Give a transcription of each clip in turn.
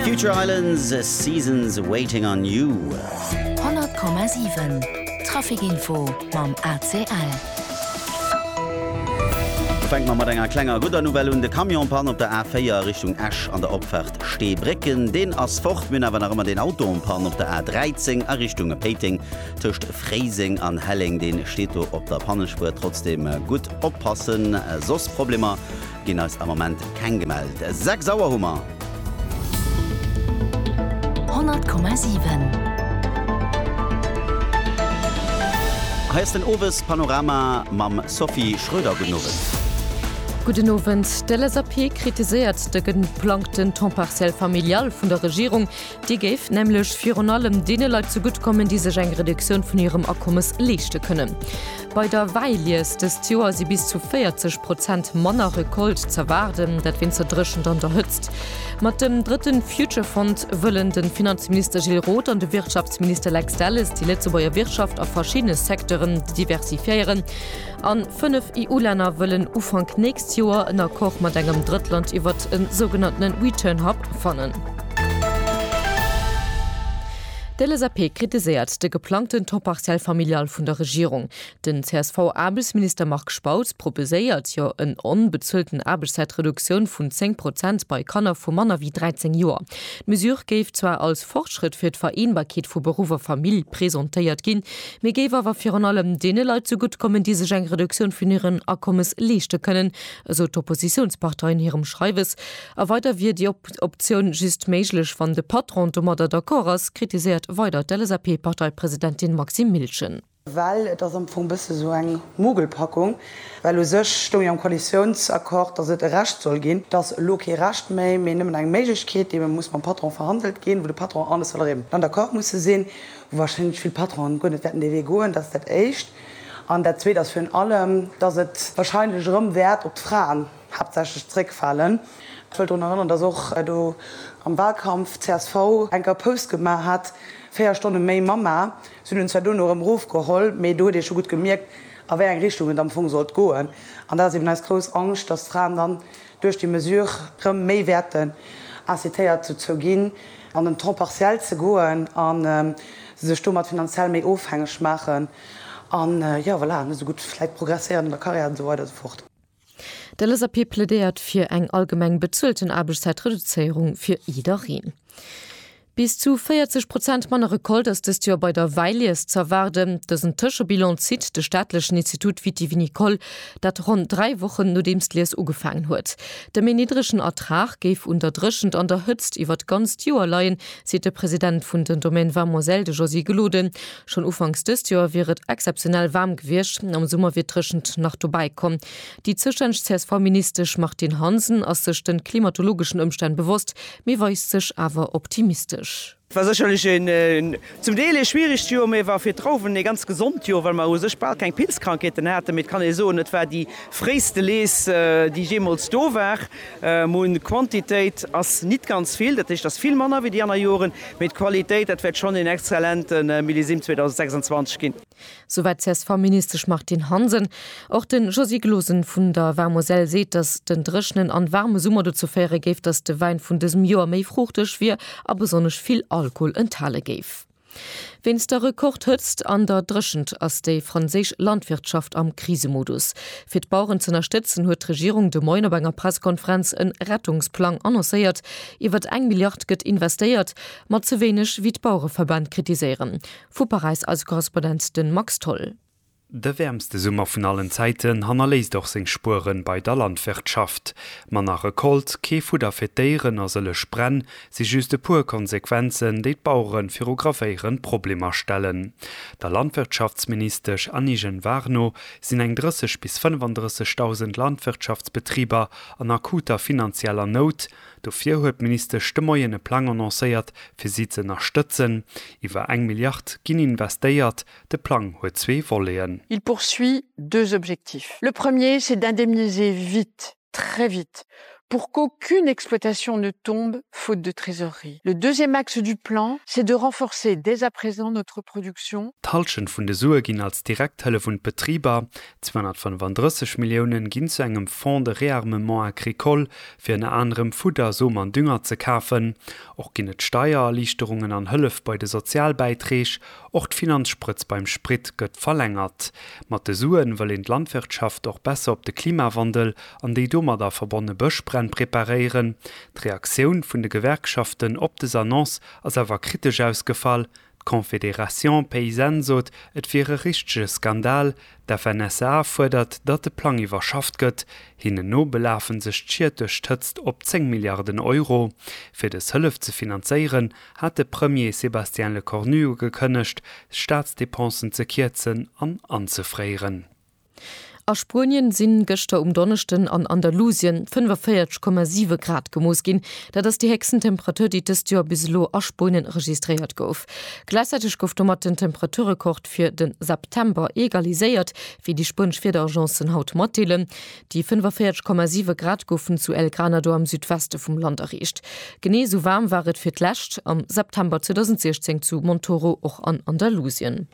Future Islands, Seasons Waiting on You. 100,7 Traficinfo mam ACL. Fänke mer mat enger klenger gudder Nouvelle un, De Camion-Panne op der A4 Richtung Esch an der Opfahrt Steebrécken, deen ass fort. Mir hunn awer nach ëmmer deen Auto en panne op der A13 a Richtung Péiteng tëscht Fréiseng an Helleng. Dee steet do op der Pannespuer. Trotzdeem gutt oppassen, soss Problemer Ginn eis am Moment keng gemellt. 6 Auer hu mer. 100,7. Hei ass den Owespanorama mam Sophie Schröder. Gudden Owend. Gudden Owend. D'LSAP kritiséiert de geplangten Temps partiel familial vun der Regierung. Déi géif nämlech virun allem deene Leit zegutt kommen, déi sech eng Reduktioun vun hirem Akommes leeschte kënnen. Bei der Wäilies dëst Joer si bis zu 40 Prozent manner Recolte z'erwaarden, dat wéinst der Dréchent an der Hëtzt. Mat dem drëtte Future-Fond wëllen de Finanzminister Gilles Roth an de Wirtschaftsminister Lex Delles déi Lëtzebuerger Wirtschaft a verschiddene Secteuren diversifiéieren an Fënnef EU-Länner wëllen Ufank nächst Joer en Accord mat engem Drëttland iwwert e sougenannten Return Hub fannen. D'LSAP kritiséiert de geplangten Taux partiel familial vun der Regierung. Den CSV-Aarbechtsminister Marc Spautz proposéiert jo en onbezuelten Aarbechtszäitreduktioun vun 10 Prozent bei Kanner vu manner wéi 13 Joer. D'Mesure géif zwar als Fortschrëtt fir d'Vereenbarkeet vu Beruff a Famill presentéiert ginn, mee géif awer virun allem deene Leit zougutt kommen, déi sech eng Reduktioun vun hiren Akommes leeschte kënnen, esou d'Oppositiounspartei an hirem Schreiwes. A weider wier déi Optioun just méiglech, wann de Patron domadder d'accord ass, kritiséiert weider d'LSAP-Parteipresidentin Maxime Miltgen. Well et ass am Fong e bësse esou eng Mogelpackung, well u sech stoung jo am Koalitiounsaccord, datt et e Recht soll ginn. Et ass elo kee Recht méi, mee nëmmen eng Méiglechkeet, déi muss mam Patron verhandelt ginn, wou de Patron an de Salariéen dann d'accord musse sinn. wou warscheinlech vill Patronen guer net wäerten dee Wee goen, dat ass dat Éischt. An dat Zweet ass virun allem, dass et warscheinlech erëm wäert op d'Fraen haaptsächlech zréckfalen. Ech wëll drun erënnern, dass och do am Wahlkampf csv eng Kéier Post gemaach hat, véier Stonne méi Mamma. Si hunn en zwar duerno erëm erofgeholl, mee do huet ee scho gutt gemierkt, a wéi eng Richtung et am Fong sollt goen. An dat ass eben eis grouss Angscht, dass d'Fraen dann duerch déi Mesure rëm méi wäerten incitéiert dozou ginn, an den Temps partiel ze goen a sech domat finanziell méi ofhängeg maachen an, jo, voilà, net esou gutt vläit progresséieren an der Karriär an esou weider an esou fort. De LSAP plädéiert fir eng allgemeng bezuelten Aarbechtszäitreduzéierung fir jiddereen. Bis zu 40 Prozent manner Recolte ass dëst Joer bei der Wäilies z'erwaarden. Dësen Tëschebilan zitt de staatlechen Institut Vitivinicole, dat ronn dräi Wochen nodeems d'Lies ugefaangen huet. De méi niddregen Ertrag géif un der Dréchent an der Hëtzt iwwert d'ganzt Joer leien, seet de President vun den Domaines Vamoiselles, de Josy Gloden. Schonn ufanks dëst Joer wier et exzeptionell waarm gewiescht, am Summer wier d'Dréchent nach dobäi komm. Déi zoustänneg CSV-Ministesch Martine Hansen ass sech de klimatologeschen Ëmstänn bewosst, mee weist sech awer optimistesch. Et war sécherlech een zum Deel ee schwieregt Joer, mee et war fir d'Trauwen ee ganz gesond Joer, well mer u sech bal keng Pilzkrankheeten haten. Mee et kann ee soen, et war déi fréiste Lees, déi jeemools do war. Mun, d'Quantitéit ass nit ganz vill, dat heescht ass vill manner wéi déi anner Joren, mee d'Qualitéit, dat wäert schonn een exzellente Millésime 2026 ginn. Souwäit d'CSV-Ministesch Martine Hansen. Och de Josy Glosen vun der War-Moselle seet, datt den dréchenen an waarme Summer dozou féiere géif, datt de Wäin vun dësem Joer méi fruuchteg wier a besonnesch vill Alkohol enthale géif. Wéinst der Rekordhëtzt an der Dréchent ass déi franséisch Landwirtschaft am Krisemodus. Fir d'Baueren z'ënnerstëtzen, huet d'Regierung de Moien op enger Pressekonferenz en Rettungsplang annoncéiert. Iwwert eng Milliard gëtt investéiert, ma ze wéineg, wéi d'Bauereverbänn kritiséieren. Vu Paräis eise Korrespondent de Max Tholl. De wäermste Summer vun allen Zäiten hannerléisst och seng Spuere bei der Landwirtschaft. Manner Recolte, kee Fudder fir d'Déieren a sëllech Bränn si just e puer Konsequenzen, déi d'Bauere viru gravéierend Problemer stellen. Der Landwirtschaftsministesch Annie Genevard no sinn eng 30 bis 35.000 Landwirtschaftsbetriber an akuter finanzieller Nout, Dofir huet d'Ministesch de Moien e Plang annoncéiert, fir si ze ënnerstëtzen. Iwwer eng Milliard ginn investéiert. De Plang huet zwee Voleten. Il poursuit deux objectifs. Le premier, c'est d'indemniser vite, très vite, pour qu'aucune exploitation ne tombe faute de trésorerie. Le deuxième axe du plan, c'est de renforcer dès à présent notre production. D'Hallschent vun de Sue ginn als direkt Hëllef un d'Betriber. 235 Milliounen ginn zu engem Fonds de réarmement agricole, fir ënner anerem Fudder, Som an Dünger ze kafen. Och ginn et Steiererliichterungen an Hëllef bei de Sozialbäiträg. Och d'Finanzsprëtz beim Sprit gëtt verlängert. Mat de Suen wëll een d'Landwirtschaft och besser op de Klimawandel an déi domadder verbonne Bëschbränn preparéieren. D'Reaktioun vun de Gewerkschaften op des Annonce ass awer kritesch ausgefall, D'Confédération paysanne sot, et wier e richtege Skandal. D'FNSEA fuerdert, datt de Plang iwwerschafft gëtt. Hinnen no belafe sech d'Schied duerch d'Hëtzt op 10 Milliarden Euro. Fir dës Hëllef ze finanzéieren, hat de Premier Sébastien Lecornu ugekënnegt, d'Staatsdepensen ze kierzen an anzefréieren. A Spuenien sinn gëschter um Donneschden an Andalusien 45,7 Grad gemooss ginn. Dat ass déi héchsten Temperatur, déi dëst Joer bis elo a Spuenien registréiert gouf. Gläichzäiteg gouf domat den Temperaturrekord fir de September egaliséiert, wéi déi spuenesch Wiederagencen haut matdeelen. Déi 45,7 Grad goufen zu El Granado am Südweste vum Land erreecht. Genee esou waarm war et fir d'lescht am September 2016 zu Montoro, och an Andalusien.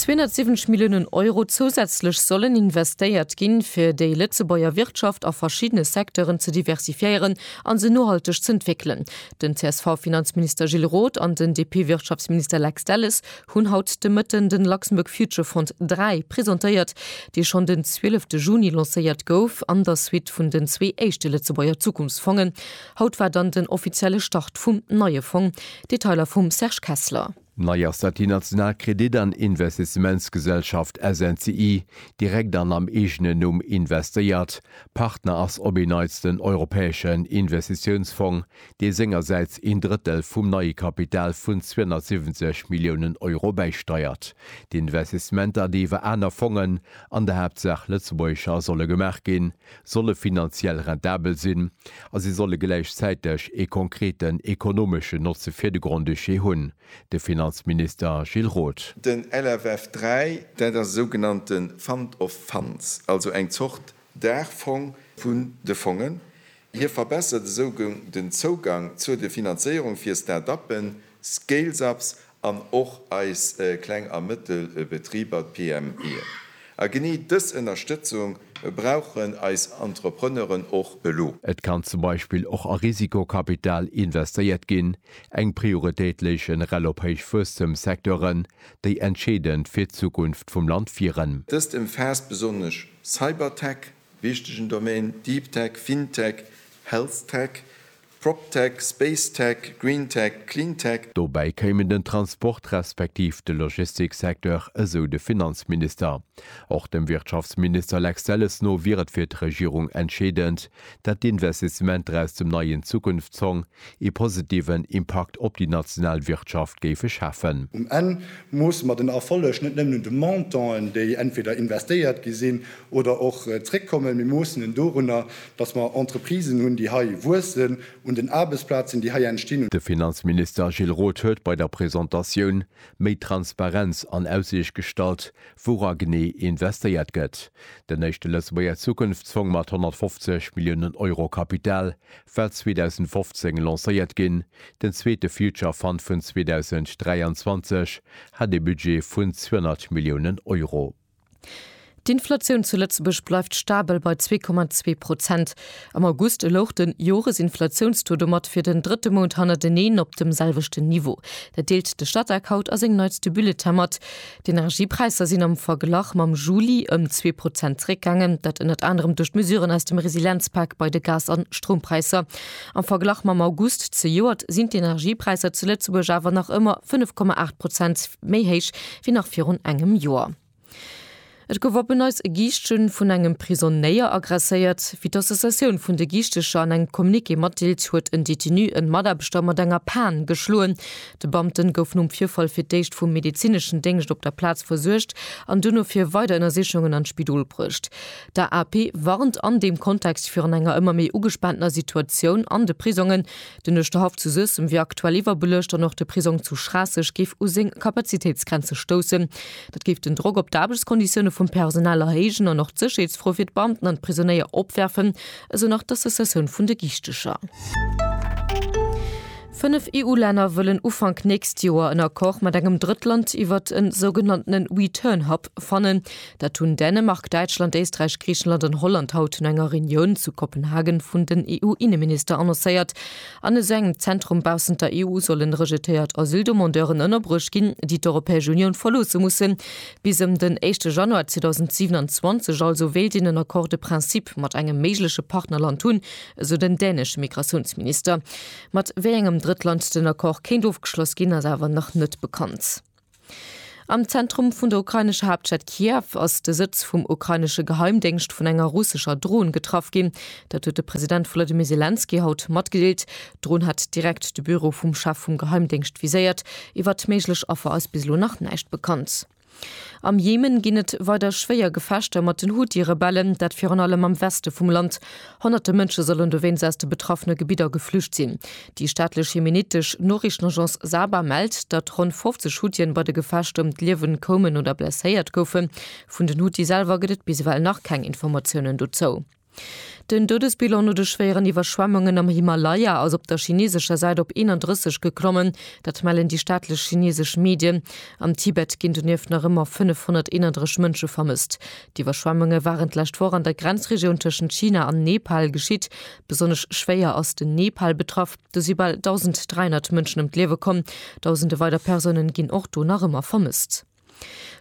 270 Milliounen Euro zousätzlech sollen investéiert ginn, fir déi Lëtzebuerger Wirtschaft a verschiddene Secteuren ze diversifiéieren a se nohalteg z'entwéckelen. Den CSV-Finanzminister Gilles Roth an den DP-Wirtschaftsminister Lex Delles hunn haut de Mëtten den Luxembourg Future Fund III presentéiert, dee schonn den 12 Juni lancéiert gouf an der Suite vun den zwee éischte Lëtzebuerger Zukunftsfongen. Haut war dann den offizielle Start vum neie Fong. Detailer vum Serge Kessler. Nei ass, datt déi national Kredit an Investissementsgesellschaft SNCI direkt an am eegenen Numm investéiert. Partner ass op een Neits den Europäeschen Investitiounsfong, dee sengersäits een Drëttel vum neie Kapital vun 270 Milliounen Euro bäisteiert. D'Investissementer, déi iwwer aner Fongen, an der Haaptsaach lëtzebuergescher, solle gemaach ginn, solle finanziell rentabel sinn a se solle gläichzäiteg ee konkreten ekonomeschen Notze fir de Grand-Duché hunn, de Finanzminister Gilles Roth. Den LFF 3, dat ass e sougenannte Fund of Funds, also eng Zort Daachfong vun de Fongen. Hie verbessert esou den Zougang zur de Finanzéierung fir Start-uppen, Scales-ups an och eis kleng a mëttel Betriber, d'PMEen. A genee dës Ënnerstëtzung brauchen eis Entrepreneuren och elo. Et kann zum Beispill och a Risikokapital investéiert ginn, eng Prioritéit léichen rel op héich Wuesstemssecteuren, déi entscheedend fir d'Zukunft vum Land wieren. Dëst ëmfaasst besonnesch Cybertech, wichtegen Domaine, Deeptech, Fintech, Healthtech, PropTech, SpaceTech, GreenTech, CleanTech. Dobäi kéimen den Transport respektiv de Logistiksecteur, esou de Finanzminister. Och dem Wirtschaftsminister Lex Delles no wier et fir d'Regierung entscheedend, dat d'Investissementer aus dem neien Zukunftsfong ee positiven Impakt op déi national Wirtschaft géife schafen. Um Enn moosse mer den Erfolleg net nëmmen un de Montanten, déi entweder investéiert gi sinn oder och zréckkommen. Mir moossen en dorunner, Dass mer Entreprisen hunn, déi hei wuessen, un den Aarbechtsplazen, déi hei entstinn. De Finanzminister Gilles Roth huet bei der Presentatioun méi Transparenz an Aussiicht gestallt, woura genee investéiert gëtt. Den éischte Lëtzebuerger Zukunftsfong mat 150 Milliounen Euro Kapital war 2015 lancéiert ginn, den zweete Future Fund vun 2023 hat ee Budget vun 200 Milliounen Euro. D'Inflatioun zu Lëtzebuerg bleift stabel bei 2,2 Prozent. Am August louch de Joresinflatiounstaux domat fir den drëtte Mount hannerteneen op dem selwechten Niveau. Dat deelt de Statec haut a sengem neitste Bulletin mat. D'Energiepräisser sinn am Verglach mam Juli ëm zwee Prozent zeréckgaangen. Dat ënnert anerem duerch d'Mesuren aus dem Resilienzpak bei de Gas a Stroumpräisser. Am Verglach mam August zejoert sinn d'Energiepräisser zu Lëtzebuerg awer nach ëmmer 5,8 Prozent méi héich wéi nach virun engem Joer. Et gouf op en Neits e Giischtje vun engem Prisonnéier agresséiert. Wéi d'Associatioun vun de Giichtecher an engem Communiqué matdeelt, huet en Detenu en Mataarbechter mat enger Pan geschloen. De Beamte gouf nom Virfall fir d'éischt vum medezineschen Déngscht op der Plaz versuergt an duerno fir weider Ënnersichungen an d'Spidol bruecht. D'AAP warnt an deem Kontext virun enger ëmmer méi ugespaantener Situatioun an de Prisongen. Den Uerschterhaff zu Suessem wier aktuell iwwerbelëscht an och de Prisong zu Schraasseg géif u seng Kapazitéitsgrenze stoussen. Dat géif den Drock op d'Aarbechtskonditioune vum Personal erhéijen an och d'Sécherheetsfro fir d'Beamten an d'Prisonéier opwerfen, esou nach d'Associatioun vun de Giichtecher. Fënnef EU-Länner wëllen Ufank nächst Joer en Accord mat engem Drëttland iwwert e sougenanntene Return Hub fannen. Dat hunn Dänemark, Däitschland, Éisträich, Griichenland an Holland haut no enger Reunioun zu Kopenhagen vun den EU-Inneminister annoncéiert. An esou engem Zentrum baussent der EU sollen rejetéiert Asyldemandeuren ënnerbruecht ginn, déi d'Europäesch Unioun verloosse mussen. Bis ëm den éischte Januar 2027 also wéilt een en Accord de principe mat engem méigleche Partnerland hunn, esou den dänesche Migratiounsminister. Mat wéi engem Drëttland den Accord kéint ofgeschloss ginn, ass awer nach net bekannt. Am Zentrum vun der ukrainescher Haaptstad Kiew ass de Sëtz vum ukrainesche Geheimdéngscht vun enger russescher Dron getraff ginn. Dat huet de President Volodymyr Selenskyj haut matgedeelt. D'Dron hat direkt de Büro vum Chef vum Geheimdéngscht viséiert. Iwwert méiglech Affer ass bis elo nach näischt bekannt. Am Jemen ginn et weider schwéier Gefechter mat den Houthi-Rebellen, dat virun allem am Weste vum Land. Honnerte Mënsche sollen dowéinst aus de betraffene Gebidder geflücht sinn. Déi staatlech jemenitesch Noriichtenagence Saba mellt, datt ronn 50 Huthien bei de Gefechter ëm d'Liewen koumen oder blesséiert goufen. Vun den Huthi selwer gëtt et bis ewell nach keng Informatiounen dozou. Den Doudesbilan no de schwéieren Iwwerschwemmungen am Himalaya ass op der chineesescher Säit op 31 geklommen. Dat mellen déi staatlech chineesesch Medien. Am Tibet ginn donieft nach ëmmer 531 Mënsche vermësst. D'Iwwerschwemmunge waren d'lescht Woch an der Grenzregioun tëschent China an Nepal geschitt. Besonnesch schwéier ass den Nepal betraff. Do si bal 1.300 Mënschen ëm d'Liewe komm. Dausende weider Persounen ginn och do nach ëmmer vermësst.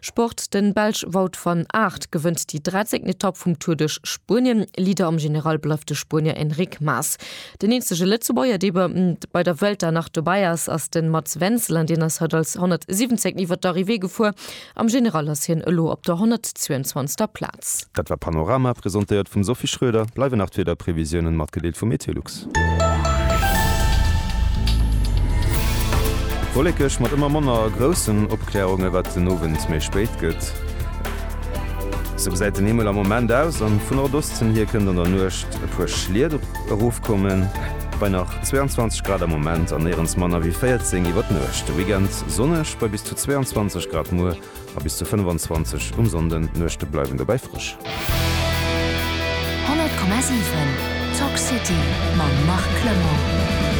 Sport, De Belsch Wout van Aert gewënnt déi 13. Etapp vum Tour duerch Spuenien. Leader am General bleift de Spuenier Enric Mas. Den eenzege Lëtzebuerger, dee bei der Vuelta nach dobäi ass, ass de Mats Wenzel an deen ass haut als 117. iwwert d'Arrivée gefuer. Am General ass hien elo op der 122. Plaz. Dat war Panorama, presentéiert vum Sophie Schroeder. Bleiwen nach d'Wiederprevisiounen, matgedeelt vum Meteolux. Wollekeg mat ëmmer manner groussen Opkläerungen, wat den Owend méi spéit gëtt. Esou gesäit den Himmel am Moment aus, an vu Nordosten hier kënnt an der Nuecht e puer Schliet erofkommen, bei nach 22 Grad am Moment an néierens manner wéi 14 iwwer d'Nuecht. De Weekend Dënschdeg sonneg bei bis zu 22 Grad, muer a bis zu 25 um Sonnde. D'Nuechte bleiwen dobäi frësch. 100,7 Talk City mam Marc Clement.